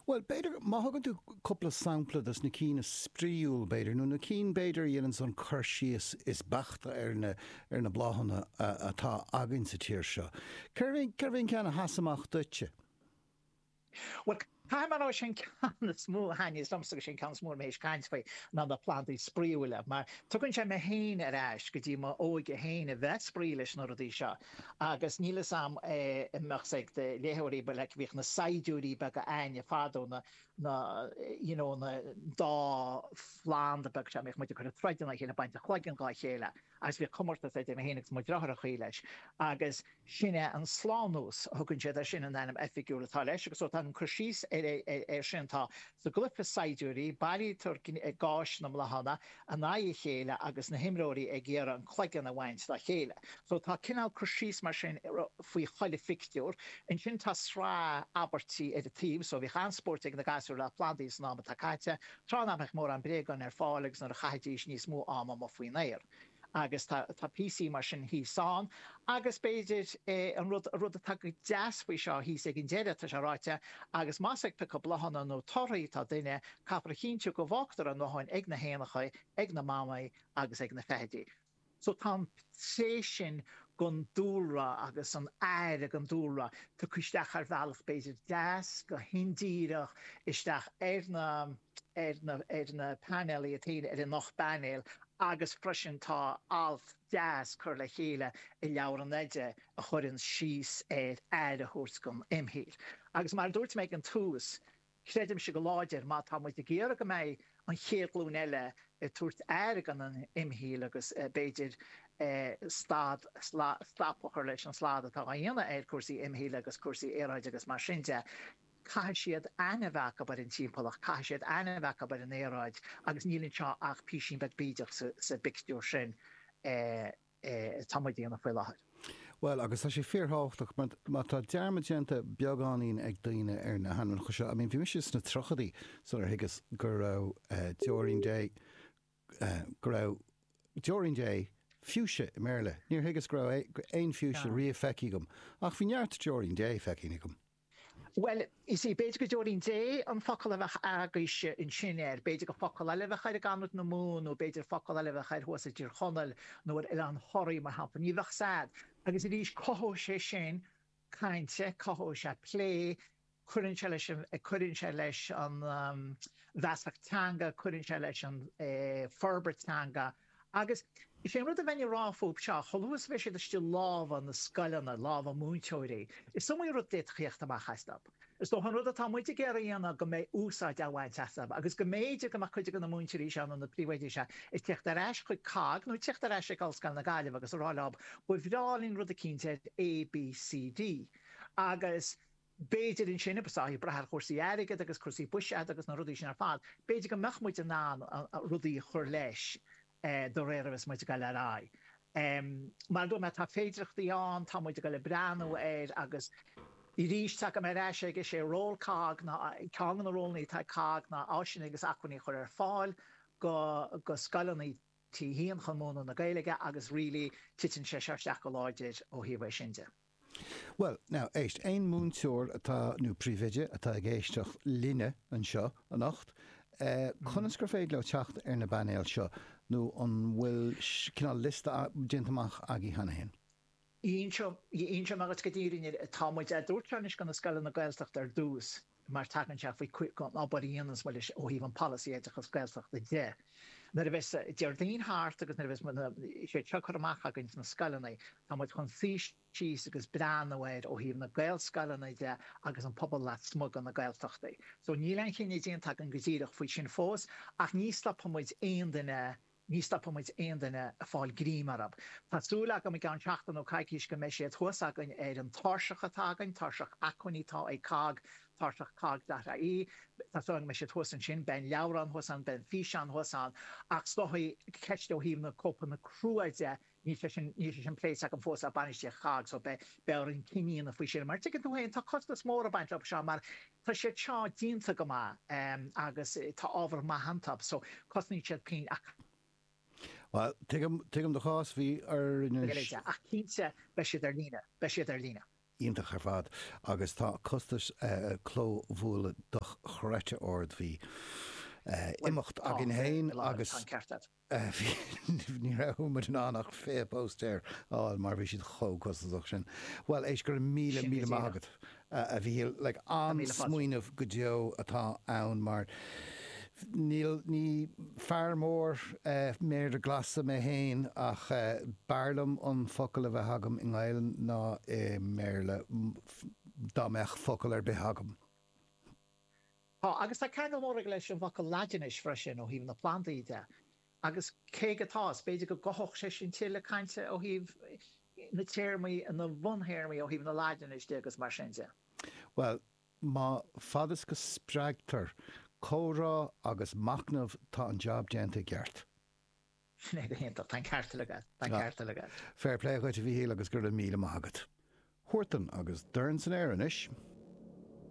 Bhuel, b'fhéidir, má thugann tú cúpla sampla dos na cinn is spraíúil, b'fhéidir, nó na cinn, b'fhéidir, a dhéananns an cur síos is beaichte ar na, ar na bláthanna atá againn sa tír seo. Cérbh é, cérbh é an ceann a sheas amach duitse? Bhuel, caithfidh mé a rá, sé an ceann is mó a thaithníos liomsa, agus sé an ceann is mó a mbeidh mé ag caint faoi, ná na plandaí spraíúla, mar tugann sé mé féin ar ais go dtí m'óige féin, a bheith ag spraoi leis na rudaí seo. Agus níl fhios a'm a mbeadh sé ag do léitheoirí, but like bhíodh na saighdiúirí beaga a'inne fadó, na, na, you know, na dá phlanda beag seo, bhíodh muid á gcur ag troid ina chéile, baint an chloiginn dhá chéile, agus bhíodh comórtas idir mé féin agus mo dhriotháir a'm chaoi leis, agus sin é an slánús a thugann siad air sin, an ainm oifigiúil atá leis, agus so tá an cur síos ar, ar, ar sin, tá Sa gcluiche saighdiúirí, buailtear gais na mbláthanna in aghaidh a chéile agus na himreoirí ag iarraidh an cloigeann a bhaint dá chéile. So tá cineál cur síos mar sin faoi chuile phictiúr. Ansin tá sraith abairtí ar an taobh. So bhíodh an-spóirt ag na gasúir le plandaí san am atá caite. Tráth nach mbeadh mórán bréagán ar fáil agus nuair a chaithidís níos mó ama amuigh faoin aer. Agus tá píosaí mar sin thíos ann. Agus b'fhéidir an rud atá go deas faoi seo thíos ag an deireadh, tá sé ráite, Agus más ag piocadh bláthanna nó torthaí atá duine, caithfear a chinntiú go bhfágtar a ndóthain ag na héanachaí, ag na mamaigh agus ag na feithidí. So tá an tréith sin den dúlra agus an aire don dúlra tugtha isteach ar bhealach b'fhéidir deas, go hindíreach, isteach ar na. ar na painéil atá ar an ocht bpainéal agus freisin tá alt deas curtha le chéile i leabhar an oide a chuireann síos ar aire a thabhairt don imshaol. Agus mar a dúirt mé ag an tús, creidimse go láidir má tá muid ag iarraidh go mbeidh an chéad ghlúin eile ag tabhairt aire don imshaol agus b'fhéidir stad, stop a chur leis an slad atá á dhéanamh ar cúrsaí imshaoil agus cúrsaí aeráide agus mar sin de, Caithfidh siad aithne a bheith acu ar an timpeallacht, caithfidh siad aithne a bheith acu ar an aeráid agus níl anseo ach písín beag bídeach sa bpictiúr sin atá muid a dhéanamh faoi láthair. Bhuel, agus tá sé fíorthábhachtach mar má tá dearmad déanta beagáinín ag daoine ar na hainmneacha seo, I mean, bhí mise sna tríochaidí sular thuigeas gurbh Deoirín Dé, gurbh Deoirín Dé fuchsia i mBéarla. Níor thuigeas go raibh aon fuchsia riamh feicthe agam, ach bhí neart Deoirín Dé feicthe agam. Bhuel, you see, b'fhéidir gur Deoirín Dé an focal a bheadh agaibhse ansin air, b'fhéidir gur focal eile a bheadh air i gConamara, nó b'fhéidir focal eile a bheadh air thuas i dTír Chonaill nó ar Oileán Thoraí, mar shampla. Ní bheadh fhios a'd. Agus arís, cothóidh sé sin cainte, cothóidh sé plé, cuireann sé leis an, cuireann sé leis an, um, bhfeasacht teanga, cuireann sé leis an, eh, forbairt teanga. Agus is é an rud a bheinn ag rá fúibh seo, chomh luath is a bheidh siad istigh i lámha na scoileanna, i lámha na múinteoirí, is iomaí rud a d'fhéadfadh a theacht amach astu. Is dócha an rud atá muid ag iarraidh a dhéanamh go mbeidh úsáid á bhaint astu agus go mb'fhéidir go mbeadh cuid de na múinteoirí seo nó na príomhoidí seo ag teacht ar ais chuig COGG nó ag teacht ar ais ag Ollscoil na Gaillimhe agus ag rá leo, ba bhreá linn rud eicínt ar A, B, C, D agus. B'fhéidir ansin, agus ag brath ar chúrsaí airgid agus cúrsaí buiséid agus na rudaí sin ar fad, b'fhéidir go mbeadh muid in ann rudaí a chur leis de réir a bheidh muid ag dul ar aghaidh. Mar a dúirt mé, tá féidireachtaí ann, tá muid ag dul ag breathnú air agus arís tagaim ar ais aige, is é ról COGG ná, ceann de na rólanna atá ag COGG ná áiseanna agus acmhainní a chur ar fáil go scoileanna T a hAon chun múineadh na Gaeilge agus really titeann sé seo isteach go láidir ó thaobh é sin de. Bhuel, now, éist, aon mhúinteoir atá, nó príomhoide, atá ag éisteacht linne anseo anocht, conas gur féidir leo teacht ar na painéil seo, nó an bhfuil cineál liosta déanta amach agaibh cheana féin? Inseoidh mé dhuit go díreach, tá muid á dtabhairt seo anois go na scoileanna Gaeltachta ar dtús. mar tagann sé faoi obair a dhéanas muide ó thaobh an polasaí oideachas Gaeltachta de. Nuair a bheas Déardaoin thart agus nuair a bheas siad seo curtha amach againn sna scoileanna, tá muid chun suí síos agus breathnú air ó thaobh na Gaelscoileanna de agus an pobal lasmuigh de na Gaeltachtaí. So níl aon chinneadh déanta againn go díreach faoi sin fós ach ní stopfaidh muid aon duine Ní stopfaidh muid aon duine ag fáil greim orthu. Tá súil agam i gceann seachtain nó coicís go mbeidh siad thuas againn ar an tairseach atá againn, tairseach acmhainní atá ag COGG, tairseach cogg.ie. Tá súil agam go mbeidh siad thuas ansin. Beidh an leabhrán thuas ann, beidh an físeán thuas ann. Ach tá an ceist ó thaobh na cóipeanna crua de Níl sé sin, níl sé sin pléite againn fós ag bainistíocht COGG so beidh, beidh orainn cinneadh a dhéanamh faoi sin mar tuigeann tú féin tá costas mór ag baint leo seo mar tá siad seo déanta go maith ehm agus tá ábhar maith iontu so cosnaíonn siad pingin ach Bhuel, tuigim, tuigim do chás, bhí orainn an. Gaeilge ach cinnte beidh siad ar líne, beidh siad ar líne. iontach ar fad agus tá costas eh clóbhuailte dochreidte ard, bhí eh imeacht againn féin agus. Tá an ceart agat. Ní raibh muid in ann ach 20 póstaer a fháil mar bhí siad chomh costasach sin. Bhuel, éist, go raibh míle, Sin go míle maith díreach. agat, a Mhíchíl. Like, Tá míle fáilte. an-smaoineamh go deo atá ann mar níl, ní fear mór eh méara glasa mé féin ach eh b'fhearr liom an focal a bheith agam i nGaelainn ná i mBéarla, dá mbeadh focal ar bith agam. Tá, agus tá ceangal mór aige leis an bhfocal Laidinis freisin ó thaobh na plandaí de, agus cé go, tá, is b'fhéidir go gcothódh sé sin tuilleadh cainte ó thaobh na téarmaí, na bhun-théarmaí ó thaobh na Laidinis de agus mar sin de. Bhuel, má, fad is go spreagtar comhrá agus machnamh, tá an jab déanta i gceart. Sin é go hiontach, tá an ceart agat, tá an ceart agat. Fair play dhuit a Mhíchíl agus go raibh míle maith agat. Huartan agus Dorn san Aer anois.